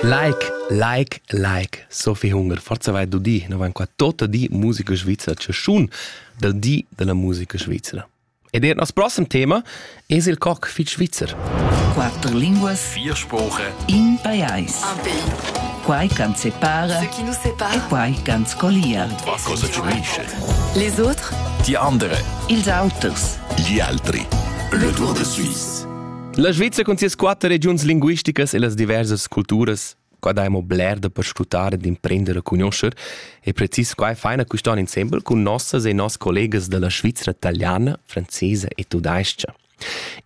Like, like, like. So viel Hunger. Forza vai du di. Noi van qua tota di musica svizzera chaschun dal di della musica svizzera. Ed er nos prossimo tema es il coc fit svizzer. Quatter linguas, vier Sprache in pajais. Un pays. Quai can separa ce qui nous sépare e quai can scolia. Va cosa ci unisce? Les autres Die andere. Ils auters. Gli altri. Le Tour de Suisse. La Svizzera cun sias quatter regiuns linguisticas e las diversas culturas qua daimo bler da perscrutar e d'imprender a conoscer e precis quai faina quistan insembel cun nossas e noss collegas da la Svizzera italiana, francesa e tudais-cha.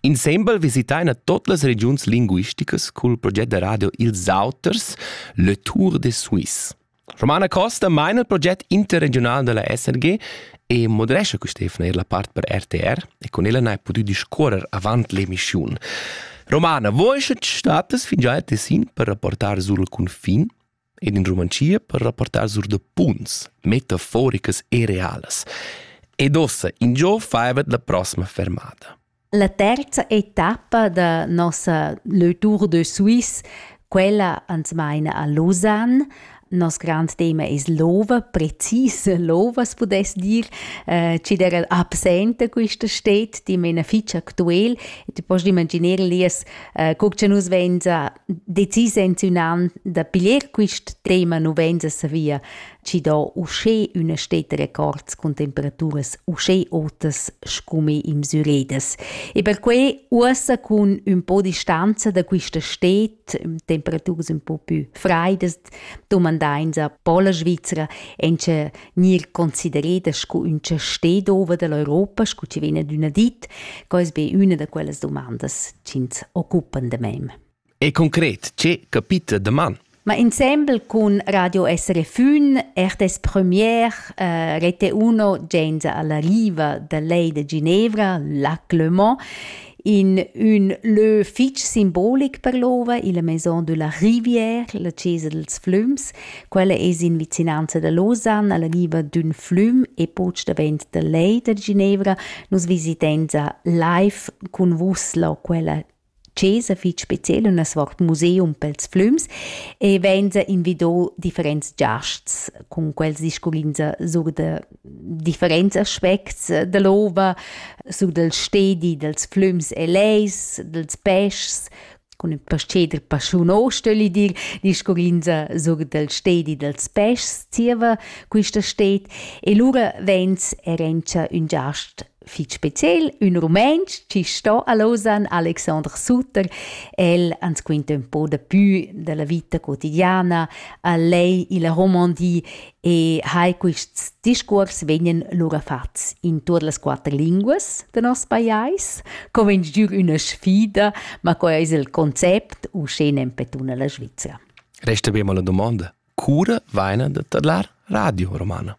Insembel visitaina tot las regiuns linguisticas cul proget da radio Ils Auters, Le Tour des Suisses. Romana Costa maina il proget interregiunal dalla SRG e moderescha quest'efna er la part per RTR e con ella n'hai pudü discuorrer avant l'emissiun. Romana, voi sche ti statas fingià a Tessin per rapportar sur il cunfin ed in Rumanzia per rapportar sur da punts metaforicas e realas. Ed ossa, in giò faivat la prossima fermata. La terza etappa da nossa Le Tour de Suisse, quella ans maina a Lausanne. Nos grand tema es l'ova, precis l'ova, as pudess dir. Eh, chi'd era absenta quista städt, dimena fich actuel. E ti post imaginer, Elias, eh, co cha nus vainsa decis enziunand da piglier quist tema, nu vainsa savia chi dà uschè üna stetta records cun temperaturas uschè otas scume in Müredes. E perquai uossa cun ün po distanza da quista stet, temperaturas un po pü fraidas, domandains a po la Svizzera encha gnir considereda sco üncha sted over da l'Europa, scu chi vegn adüna dit, quai es be üna da quellas dumandas chi'ns occupan da mem. E concret, che capita daman? Ma insembel cun Radio SRFün, RTS Premier, eh, Rete 1, gens alla riva da lei de Ginevra, Lac Le Mans, in un lö fitg simbolic per l'ova, la Maison de la Rivière, la Chiesa dels Flüms. Quella es in vicinanza da Lausanne, alla riva d'ün flüm e poch davent da lei de Ginevra. Nus visitenza live cun vus la quella chesa fich speciel üna svart museum pels flüms e vainsa invido differents giasts cun quels discurrinsa sur da differents aspects da l'ova, sur dal stedi dals flüms e lejs, dals peschs, cun ün pas-cheder paschun o stögli dir, discurrinsa sur dal stedi dals peschs zieva quista sted e lura vains e rendscha ün giast fich speciel, ün rumentsch chi sto a Lausanne, Alexandre Sutter. El ans quinta ün po dapü della vita quotidiana, a lei illa Romandie e hai quists discuors vegnan lura fats in tuot las quatter linguas del nos pajais, com in giür üna sfida, ma quai ais il concept uschè nempe tuna la Svizzera. Resta be mal la domanda. cura vaina da tadlar Radio Romana.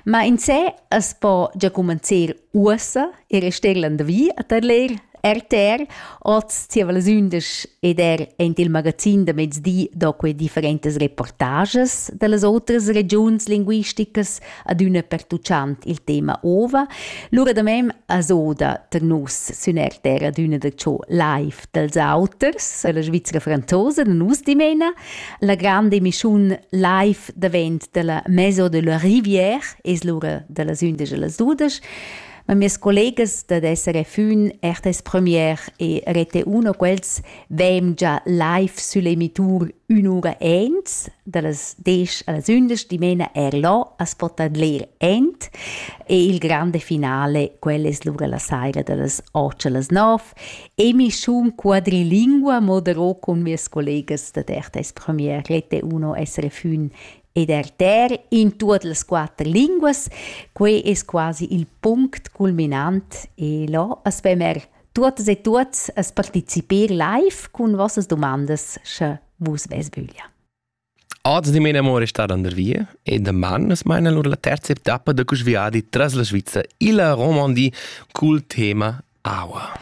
Ma in se as po già comencer uossa e rester landavi a tadler RTR, oz zieva las undisch ed er ent il magazin da mezdi do que differentas reportages da las otras regiuns linguisticas adüna pertuchant il tema ova. Lura da mem as oda ter nus sün RTR adüna da ciò live dels auters, la Svizzera franzosa, nus dimena, la grande emissiun live davent della Maison de la Rivière es l'ura dellas undisch e las dudisch. Ma mes collegas da SRF 1, RTS Premier e Rete 1, quels veem già live sulle emitur un'ura ent, dallas 10 alles 11, dimena er là a spotadler ent, e il grande finale, quel es l'ura la saira dallas 8 alles 9, E mi schon quadrilingua modero con mes collegas da Tertes Premier rete uno essere fun ed erter in tuot las quatter linguas, quei es quasi il punct culminant e là aspet mer tuotas e tuots as partecipir live cun vossas domandas, sche vus ves vöglia. Oz di mia amore star under via e daman es maina lur la terza etappa da cus viadi tras la Sviza illa Romandie cul tema aua.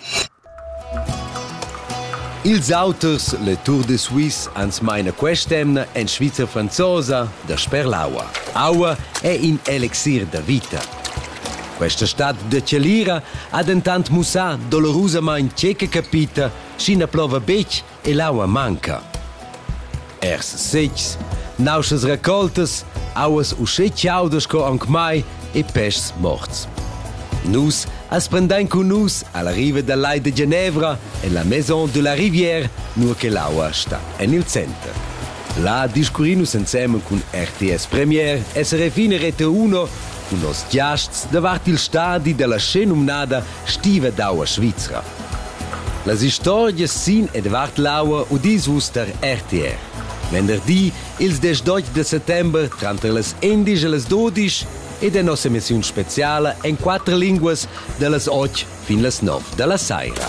Ils auters, le Tour de Suisse, ans maina quest'emna en Svizra franzosa dasper l'aua. Aua è in elixir da vita. Questa stad de Celira ha dentant mussà dolorusamain tge che capita, sch'i na plova betg e l'aua manca. Ers setgs, nauschas raccoltas, auas uschè chaudas sco aunc mai e peschs morts. Nus as prendein cun nus alla riva dal Lai de Genevra en la Maison de la Rivière, nur che l'aua sta en il center. Là discurrin nus ensemen cun RTS Premier, SRF in e Rete 1 cun nos giasts davart il stadi della scen numnada Stiva d'aua svizra. Las istorgias sin Edward Lauer udis vus tar RTR. Venderdi, ils 18 de settembre, tranter las endisch e las dodisch, ed è nossa emissiun speciala en quatter linguas da las otg fin las nov da la saira.